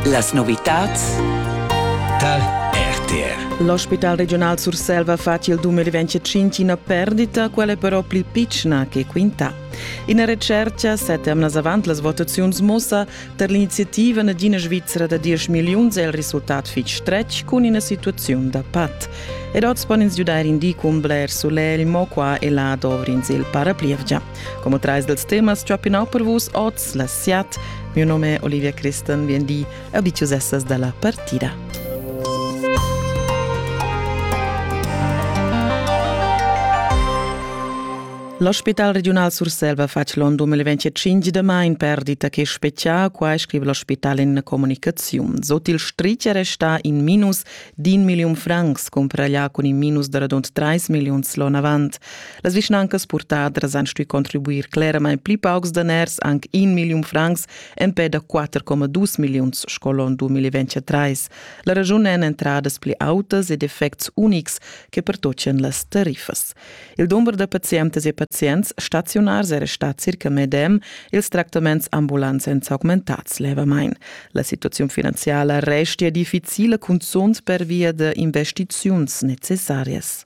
Las novitads Tal RTR. L'ospital regional Surselva fa il 2025 una perdita, quella però più piccina che quinta. Ina recerca, sette emnas avant las votaziuns, mossa per l'iniziativa Nadina Svizzera da 10 miliuns è il risultat fitg stretg cun una situazione da pat. Ed oz pon ins giudar in di cun bler solegl, mo qua e là dovrins il paraplievgia. Como trais dels temas chopinau per vus oz la siat. Mio nome è Olivia Christen, vien di, abitiusessas dalla partida. L'ospital regional Surselva fa l'on 2005 de main perdita che speccia, qua scrive l'ospital in comunicazione. Sot il strice resta in minus d'in million francs, compra llà con in minus de radund 3 millions l'on avant. Las vischnancas purtadras han stuì contribuir cleramain pli paucs daners, anc in milliun francs, empè da 4,2 milliuns sco l'onn 2023. La raschun èn entradas pli autas ed effects unics che pertochian las tariffas. Il dumber da pazientas e pazients staziunars era stà circa medem, ils tractaments ambulants èn s'augmentads levamain. La situaziun finanziala restia difficila, cunzunt pervia da investiziuns necessarias.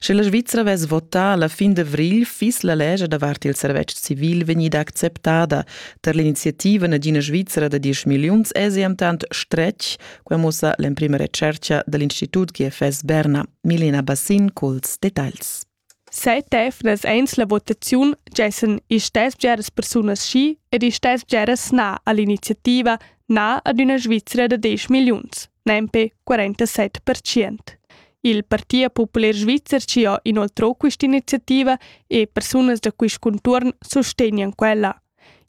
Sche la Svizra vess votà la fin d'avrigl, fiss la lescha davart il servetsch civil vegnida acceptada. Tar l'iniziativa Nagina Svizra da diesch milliuns èsi entant stretg, quai mussa l'emprima retschertga da l'Institut GFS Berna. Milena Bassin culs detagls. Set efnas eins la votaziun gessen istess bgeras persunas schi ed istess bgeras na all'iniziativa na ad üna Svizra da 10 milliuns, nempe 47%. Il Partia populer svizzer ci ha inoltrò quest'iniziativa e persunas da quist contuorn sustegnan quella.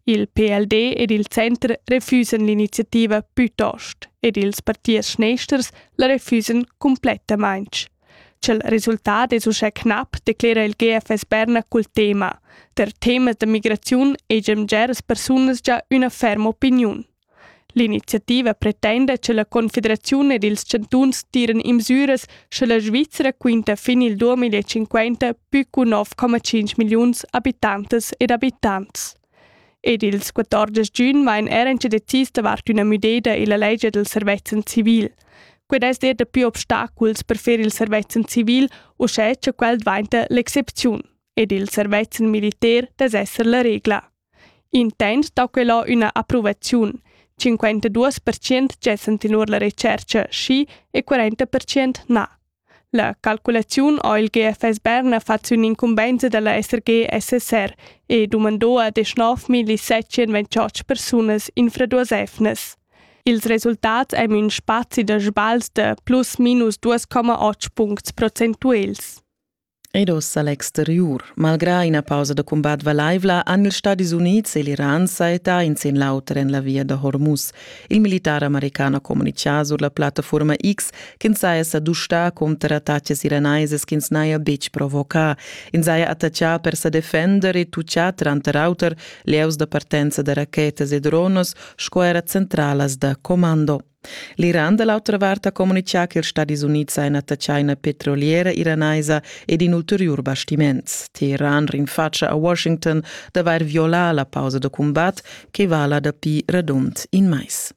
Il PLD ed il Center refusan l'iniziativa plütost ed ils partiers schneisters la refusan complettamaing. Ch'el resultat es uschè knapp, declera il GFS Berna cul tema. Der temas da migraziun egiam geras persunas già üna ferma opiniun. L'iniziativa pretenda che la Confederaziun ed ils chantuns tiran imsüras scha la Svizra quinta fin il 2050 pü cu 9,5 milliuns abitantas ed abitants. Ed ils 14 giugn vain eran che decis davart üna müdeda illa legge del servezzan civil. Qued es er da più obstaculs per fer il servezzan civil, uschè cha quel dvainta l'excepziun, ed il servezzan militar dess esser la regla. Intent dà quella üna approvaziun. 52% gessan tenor la retschercha schi e 40% na. La calculaziun ha il GFS Berna fat sün incumbenza da la SRG-SSR e dumandò ad 9.728 persunas infraduosefnas. Ils resultats ein ün spazi da sbagls da plus minus 2,8 puncts procentuels. Ed ossa l'exteriur. Malgrà ina pausa da cumbat valaivla han ils Stadis Unids e l'Iran sajettà in sin l'auter en la via da Hormuz. Il militar american ha communitgà sur la plattaforma X ch'ins saja sa dustà cunter attacas iranaisas ch'ins n'haja betg provocà. Ins haja attaccà per sa defender e tutgà tranter auter lieus da partenza da rachetas e dronas sco era centralas da commando. L'Iran da l'autra vart ha communitgà che ils Stadis Unids hajan attachà ina petroliera iranaisa ed in ulteriur bastiments. Teheran rinfatscha a Washington d'avair violà la pausa da cumbat che vala dapi radund in mais.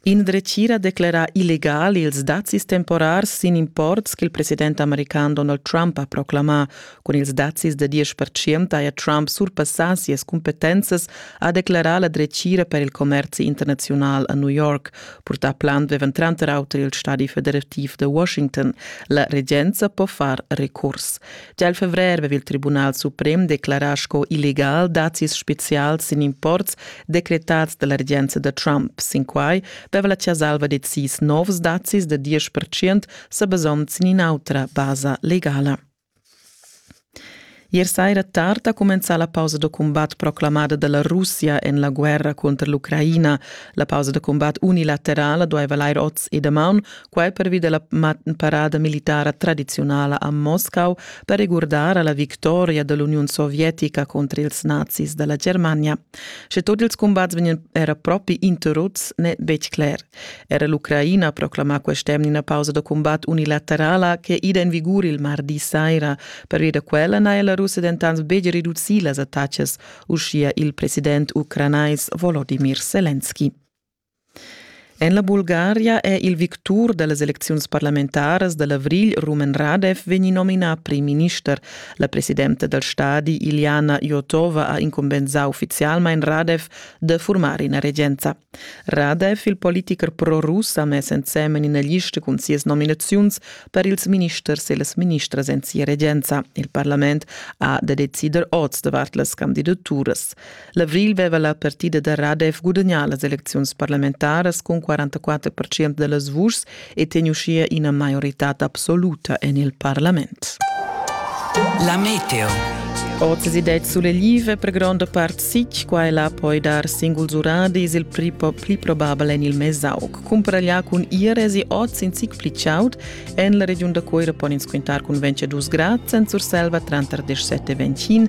In dretgira declera illegal ils dazis temporars sin imports ch'il president american Donald Trump ha proclamà Cun ils dazis da diesch pertschient haja Trump surpassà sias cumpetenzas, ha declarà la dretgira per il commerzi internaziunal a New York. Purtà plan avevan tranter auter il stadi federativ da Washington. La regenza po far recurs. Gia il fevrer aveva il Tribunal suprem declarà sco illegal dazis spezials sin imports decretads da la regenza da Trump. Sin quai aveva la Ciasalva decis novs dazis da diesch pertschient sa basond sin in'autra basa legala. Ier saira tard ha cumenzà la pausa da cumbat proclamada da la Russia en la guerra cunter l'Ucraina. La pausa da cumbat unilaterala dueva lair oz e damaun, quai pervi da la parada militara tradiziunala a Moscau per regurdar a la victoria da l'Uniun sovietica contr ils nazis da la Germania. Sche tut ils cumbats vegnan era propi interruts, n'è betg cler. Era l'Ucraina proclama quest'emna ina pausa da cumbat unilaterala che ida en vigur il mardi saira. Pervia da quella n'ha la Russia dentant betg reducì las attacas, uschia il president ucranais Volodimir Selenski. En la Bulgaria è il victur da las elecziuns parlamentaras da l'avrigl Rumen Radev vegnì nominà primminister. La presidenta dal stadi Iljana Jotova ha incumbensà uffizialmain Radev da furmar ina regenza. Radev, il politicher pro-rus, ha mess ensemen ina lista cun sias nominaziuns per ils ministers e las ministras en sia regenza. Il parlament ha da decider oz davart las candidaturas. L'avril veva la partida da RADEF gudagnà las elecziuns parlamentaras cun 44% da las vuschs e teniu uschia ina maioritad absoluta en il parlament. La meteo. Oz si det sull'elive per grande part sic, qua e là poi dar singuls uradis il pli, pli probabel en il Mesaug. Cumparaglià cun Ieresi oz in sic pli chaud, en la regiun da Coira pon ins quintar cun 22 grad, sen Surselva tranter 17 e 21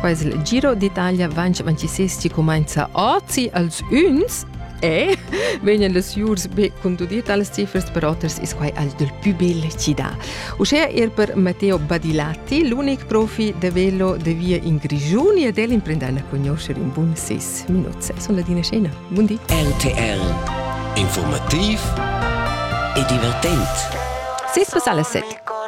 Qua es il Giro d'Italia 2026 chi cumainza ozi als üns e vegnan las jurs be cun tuot tales cifras per oters is quai al dal pü bel chi dà. Uschè er per Matteo Badilatti, l'unic profi da velo da via in Grischun ed el imprendan a cugnuoscher in bun ses minuts. Sun ladina scena. Bun di. RTR Informativ e divertent. Sis pass alla set.